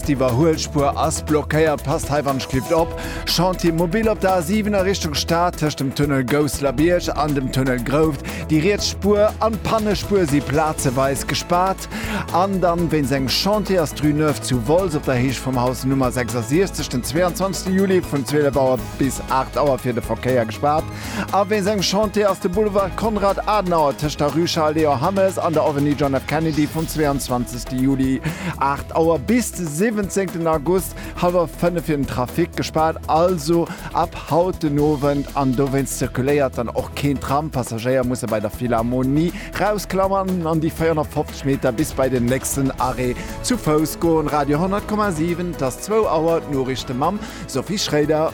D'Iwwerhuelspuer ass blockéiert, passt hei wann ech kifft op. Chantier mobile op der A7 a Richtung Stad tëscht dem Tunnel Gousselerbiërg an dem Tunnel Grouft. Déi riets Spuer an d'Pannespuer si plazeweis gespaart. An dann wéinst engem Chantier ass d'Rue Neuve zu Wolz op der Héicht vum Haus Nummer 66 den 22 Juli vun 12 Auer bis 8 Auer fir de Verkéier gespaart. A wéinst engem Chantier ass de Boulevard Konrad Adenauer tëscht der Rue Charles Léon Hammes an der Avenue John F. Kennedy vum 22. Juli 8 Auer bis de 17. August hallwer 5 fir den Trafic gespaart. Also ab haut den Owend an dowéinst zirkuléiert dann och keen Tram. Passagéier musse bei der Philharmonie rausklammen an déi 450 Meter bis bei den nächsten Arrêt zu Fouss goen. Radio 100,7 't ass zwou Auer, d'Noriichte mam. Sophie Schroeder.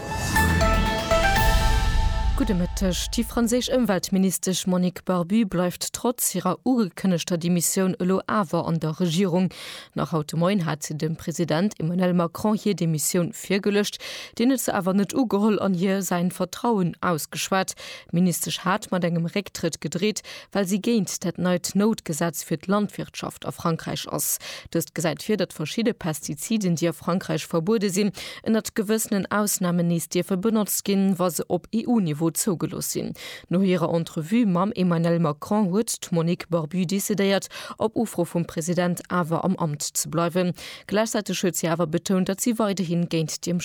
Gudde Mëtteg. Déi franséisch Ëmweltministesch Monique Barbu bleift trotz hirer ugekënnegter Demissioun elo awer an der Regierung. Nach haut de Moien hat si dem President Emmanuel Macron hir Demissioun virgeluecht. Deen huet se awer net ugeholl an hir säin Vertrauen ausgeschwat. D'Ministesch hat mat engem Récktrëtt gedreet, well si géint dat neit Noutgesetz fir d'Landwirtschaft a Frankräich ass. Dëst gesäit vir, datt verschidde Pestiziden, déi a Frankräich verbuede sinn, ënnert gewëssenen Ausnamen nees dierfe benotzt ginn, wa se op EU-Niveau zougelooss sinn. No hirer Entrevue mam Emmanuel Macron huet d'Monique Barbu decidéiert, op Ufro vum President awer am Amt ze bleiwen. Gläichzäiteg huet si awer betount, datt si weiderhi géint déi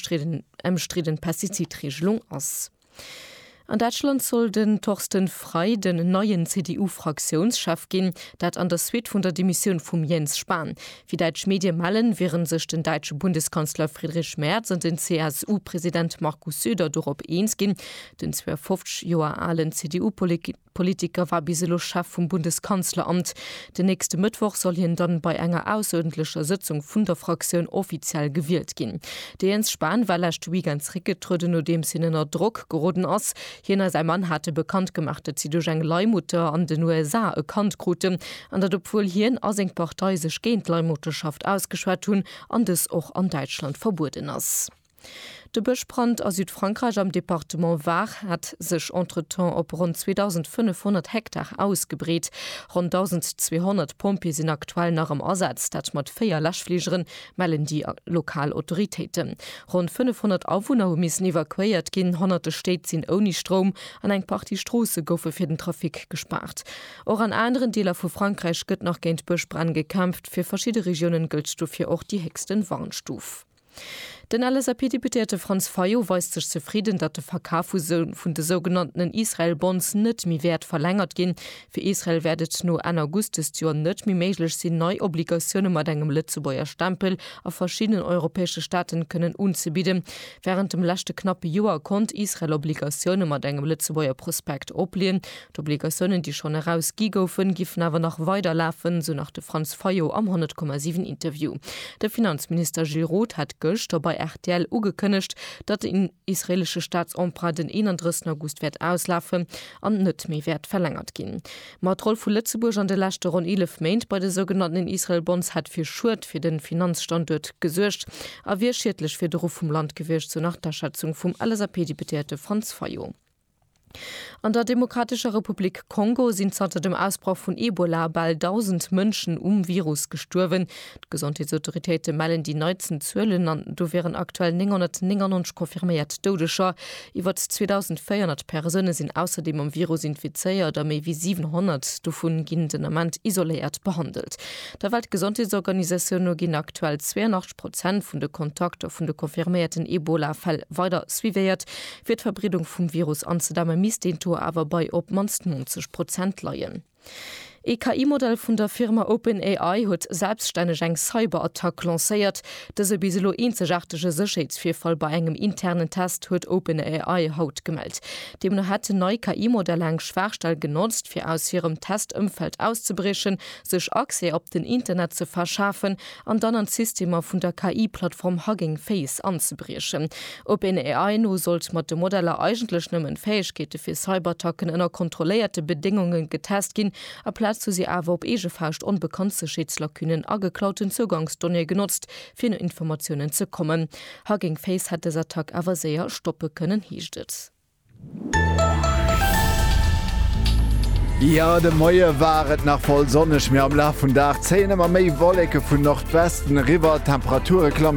ëmstridden Pestizidreegelung ass. An Däitschland soll den Thorsten Frei den neien CDU-Fraktiounschef ginn, dat an der Suite vun der Demissioun vum Jens Spahn. Wéi däitsch Medie mellen, wiere sech den däitsche Bundeskanzler Friedrich Merz an den CSU-President Markus Söder dorop eens ginn, den 52 Joer alen CDU-Politiker, Politiker war bis elo Chef vum Bundeskanzleramt. Den nächste Mëttwoch soll hien dann bei enger ausseruerdentlecher Sëtzung vun der Fraktioun offiziell gewielt ginn. De Jens Spahn war leschte Weekend zeréckgetrueden, nodeems hien ënner Drock geroden ass. Hien a säi Mann hate bekannt gemaach, datt si duerch eng Leihmutter an den USA e Kand kruten, an datt obwuel hien a seng Partei sech géint d'Leihmutterschaft ausgeschwat hunn, an dës och an Däitschland verbueden ass. De Bëschbrand a Südfrankräich am Departement Var hat sech entretemps op ronn 2.500 Hektar ausgebreet. Ronn 1.200 Pompjeeë sinn aktuell nach am Asaz, dat mat véier Läschfligeren, mellen déi lokal Autoritéiten. Ronn 500 Awunner hu missen evakuéiert ginn, honnerte Stéit sinn ouni Stroum an eng Partie Stroosse goufe fir den Trafic gespaart. Och an aneren Deeler vu Frankräich gëtt nach géint Bëschbränn gekämpft. Fir verschidde Regiounen gëllt dofir och déi héchsten Warnstuf. Den LSAP-Deputéierte Franz Fayot weist sech zefridden, datt de Verkaf vun de sougenanntenen Israel-Bonds net méi wäert verlängert ginn. Fir Israel wäert et no Enn August dëst Joer net méi méiglech sinn, nei Obligatioune mat engem Lëtzebuerger Stempel a verschiddenen europäesche Staaten kënnen unzebidden. Wärend dem leschte knappe Joer konnt Israel Obligatioune mat engem Lëtzebuerger Prospekt oplieen, D'Obligatiounen, déi schonn eraus gi goufen, giffen awer nach weider lafen, sou nach de Franz Fayot am 10,7 Interview. De Finanzminister Gilles Roth hat gëschter bei rtl ugekënnegt, datt den israeelesche Staatsemprunt den 31 August wäert auslafen an net méi wäert verlängert ginn. Ma d'Roll vu Lëtzebuerg an de leschte ronn 11 Méint bei de sougenannten Israel Bonds hätt fir Schued fir de Finanzstanduert gesuergt a wier schiedlech fir de Ruff vum Land gewiescht, sou nach d'Aschätzung vum LSAP-Deputéierte Franz Fayot. An der Demokratescher Republik Kongo sinn zanter dem Ausbroch vun Ebola bal 1.000 Mënschen um Virus gestuerwen. D'Gesondheetsautoritéite mellen déi neitsten Zuelen an do wieren aktuell 999 confirméiert Doudeger. Iwwer 2.400 Persoune sinn ausserdeem mam Virus infizéiert a méi wéi 700 dovu ginn den Ament isoléiert behandelt. Der Weltgesondheetsorganisatioun no ginn aktuell 82 Prozent vun de Kontakter vun de confirméierten Ebola-Fäll weider suivéiert. Fir d'Verbreedung vum Virus anzedämme misst deen Taux awer bei op d'mannst 90 Prozent leien. Ee KI-Modell vun der Firma OpenAI huet selbstänneg eng Cyberattack lancéiert. Dëse bis elo eenzegaartege Sécherheetsvirfall bei engem internen Test huet OpenAI haut gemellt. Deemno hätten nei KI-Modeller eng Schwaachstell genotzt, fir aus hirem Test-Ëmfeld auszebriechen, sech Accès op den Internet ze verschafen an dann an d'Systemer vun der KI-Plattform Hugging Face anzebriechen. OpenAI no sollt mat de Modeller eigentlech nëmmen d'Fäegkeete fir Cyberattacken ënner kontrolléierte Bedéngunge getest ginn, aplaz hu si awer op eege Faascht onbekannt Sécherheetslacunen a geklauten Zougangsdonnéeë genotzt, fir no Informatiounen ze kommen. Hugging Face hätt dës Attack awer séier stoppe kënnen, heescht et. Jo, de Moie war et nach voll sonneg, mee am Laf vum Dag zéien ëmmer méi Wolleke vun Nordwesten eriwwer. D'Temperature klammen.